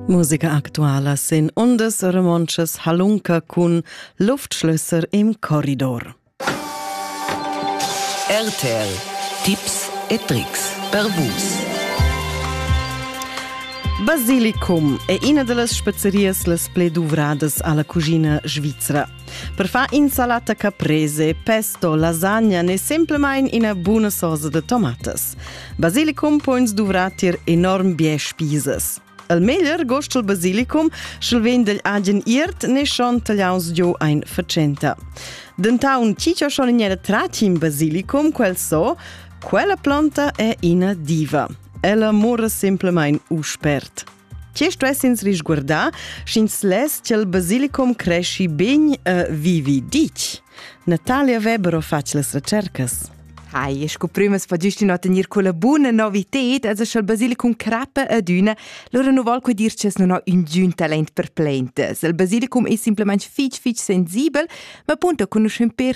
Musica actuala sin undas romontschas halunca cun Luftschlösser im Korridor. RTL Tipps e Tricks per Vus. Basilicum è ina delle spezzerias las pli duvradas alla cucina svizzera. Per far insalata caprese, pesto, lasagna n'è semplamain ina buna sosa da tomatas. Basilicum pons duvrar tier enorm bien spisas. Il meglier gost il basilicum, sch'el vegn dagl agen iert ne schon tagliaus giu ein facenta. Dentaun chi cho schon in tratim basilicum quel so, quella planta è ina diva. Ella mora semplamain u spert. Che stuess ins risguardar, sch'ins less ch'el basilicum cresci begn e vivi ditg? Natalia Weber ha fatg las recercas. Hai, sco prümas fagist ün tener quella buna novited, as sch'al basilicum crappa adüna, lura nu val que dir ch'es non ha ün giun talent per plaintas. Il basilicum es simplement fich fich sensibel, ma punta cun uschè per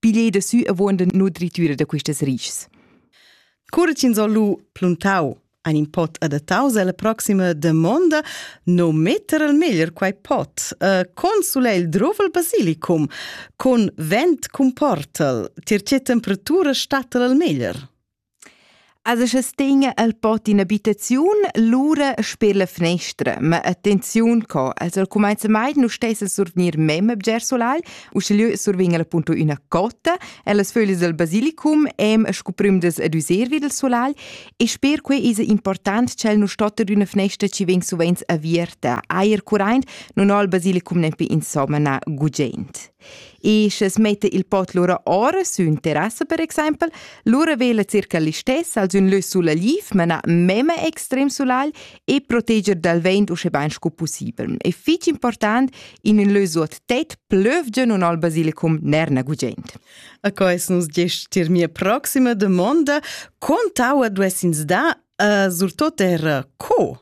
piglier da su avon den nutritüra da quistas rischs. Cura ch'ins ho lu pluntau ein in pot adattaus alla proxima damonda, no metter al meglier quei pot, uh, con sulegl drovel basilicum, con vent cun portel, tier che temperatura stattel al meglier. Also sche stegn el pot in abitaziun, lura sper la fnestra, ma attenziun co, also cumainza mai nu stess a survgnir mem a bger solai, uschigliö survegn el appunto üna cotta e las föglis del basilicum em scu prümdas ad üser vi dal solai e sper quai esa important ch'el nu stotta d'üna fnestra chi vegn suvenz avierta. Eir curaint nun ho il basilicum nempe insomma na gugent. E sches metta il pot lura ora sün terrassa per exempel, lura vela circa l'istess als ün lö sulaliv, mena mema extrem sulagl e proteger dal vent usche bain scu pussibel. E fich important, in ün lö suot tet plövgia nun al basilicum nerna gugent. A cois nos gest tier mia proxima domanda, quant aua duessins da, uh, surtot er co?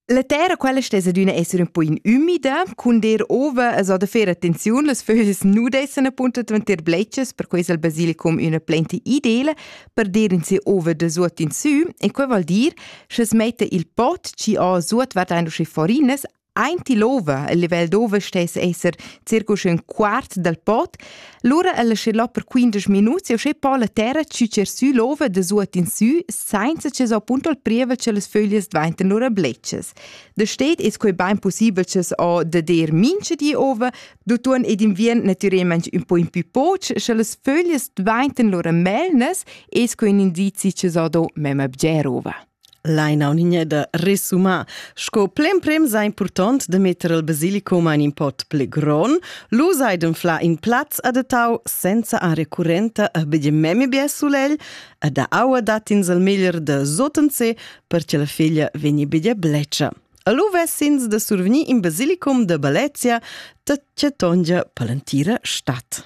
La terra quella stessa d'una essere un po in umida, cun der ova a so da fare attenzione, las fögls nu dessen appunto dvanter bletschas, per questo al basilicum una plenta ideale per der in se ova da suot in sü e quel vuol dir, che es mette il pot ci ha suot wat ein usche forinas Eint l'ova, il livello d'ova stess esser circa un quart dal pot, Lura el schi là per 15 minuts e sche po la terra ciucer sü l'ova da suot in sü senza che so appunto il prievel che las föglias dvainten lura bletschas. Da steht es quei bain possibel che o da der minche di ova, d'utuon ed inviern natüralment un po in più poch, sche las föglias dvainten lura melnas, es quei un indizi che so do mem abger ova. Laina Unigneda resuma, sco plemprim sa impurtont da metter il basilicum in in pot pli gron, lu sai d'anflar in plaz adattau senza aria currenta e begie memia bia sulegl e da aua dat ins il meglier da sottenser per che la feglia vegni begia bletscha. Allo ves'ins da survegnir in basilicum da Balezia da Cetongia Palantira Stadt.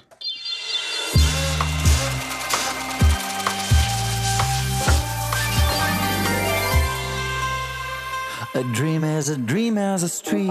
A dream is a dream is a street.